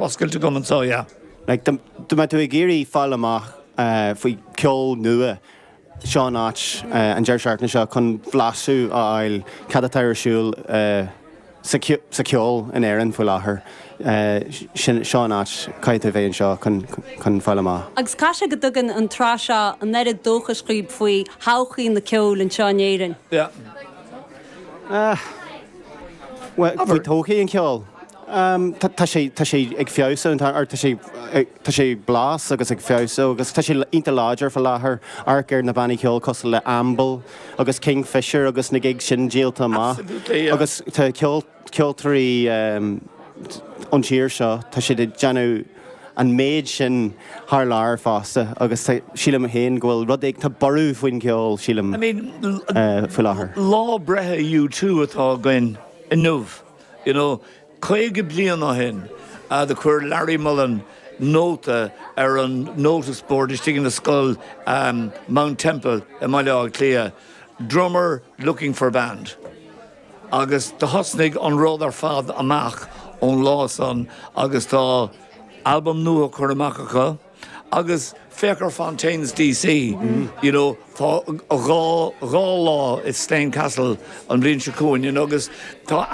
Oscailte go maith, yeah. Like, dá mbeadh tú ag iarraidh fáil amach faoi cheol nua, seo an áit, an deireadh seachtaine seo, chun blaiseadh a fháil cad atá ar siúl sa cheol in Éirinn faoi láthair. Sin, seo an áit, caithfidh tú bheith anseo chun fáil amach. Agus caithfidh sé go dtugann an tsraith seo an oiread dóchais dhaoibh faoi thodhchaí an cheoil anseo in Éirinn? Yeah. Faoi todhchaí an cheoil? Tá sé ag feabhsú an t-am ar fad, tá sé ag fás agus ag feabhsú agus tá sé iontach láidir faoi láthair. Amharc ar na bannaí ceoil cosúil le Amble agus Kingfishr agus na gigs sin díolta amach agus tá ceoltóirí ón tír seo tá siad ag déanamh, an méid sin thar lear fosta agus sílim féin go bhfuil rud éigin, tá borradh faoin gceol sílim faoi láthair. Lá breithe U2 atá againn inniu, you know, 50 bliain ó shin a chuir Larry Mullen nóta ar an notice board istigh ina scoil Mount Temple i mBaile Átha Cliath, 'Drummer looking for band'. Agus do thosnaigh an rud ar fad amach ón lá san agus tá albam nua curtha amach acu agus féach ar Fontaines DC, you know, tá dhá, dhá lá i Slane Castle an bhliain seo chugainn, you know, agus tá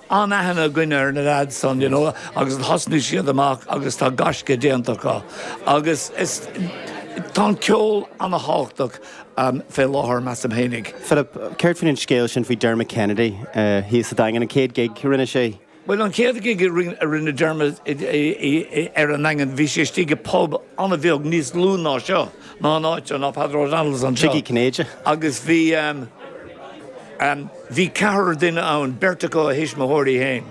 an-aithne againn ar na leaids sin, you know, agus do thosnaigh siad amach agus tá gaisce déanta acu agus is, tá an ceol ana-thábhachtach. Fé láthair, measaim féin. Philip, céard faoin an scéal sin faoi Dermot Kennedy thíos sa Daingean, an chéad gig a rinne sé? Bhuel, an chéad gig a rinne Dermot ar an Daingean, bhí sé istigh i pub an-bheag níos lú ná seo, ná an áit seo, ná Peadar Ó Domhnaill anseo. Tigh Uí Chinnéide. Agus bhí, bhí ceathrar duine ann, beirt acu a thuismitheoirí féin,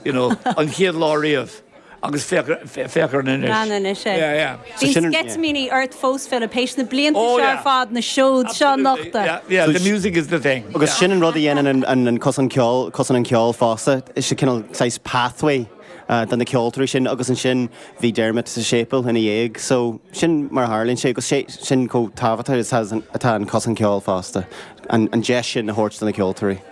you know, an chéad lá riamh. Agus féach air anois. Anois é. Yeah, yeah. Bíonn sceitimíní ort fós, Philip, théis na blianta seo ar fad, na seoda seo a nochtadh. Absolutely, yeah, yeah, the music is the thing. Agus sin an rud a dhéanann an cosán ceoil, Cosán an Cheoil fosta, is cineál saghas pathway do na ceoltóirí sin agus ansin bhí Dermot sa séipeal ina dhiaidh, so sin mar a tharlaíonn sé agus sin chomh tábhachtach is atá an cosán ceoil fosta, an deis sin a thabhairt do na ceoltóirí.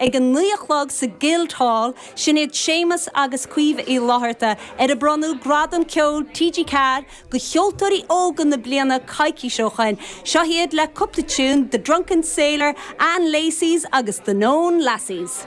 Ag a naoi a chlog sa Guildhall, sin iad Séamus agus Caoimhe Uí Fhlatharta, ar a bronnadh Gradam Ceoil TG4 do cheoltóirí óga na bliana coicís ó shoin. Seo iad le cúpla tiún, The Drunken Sailor, Ann Lacey's agus The Noon Lasses.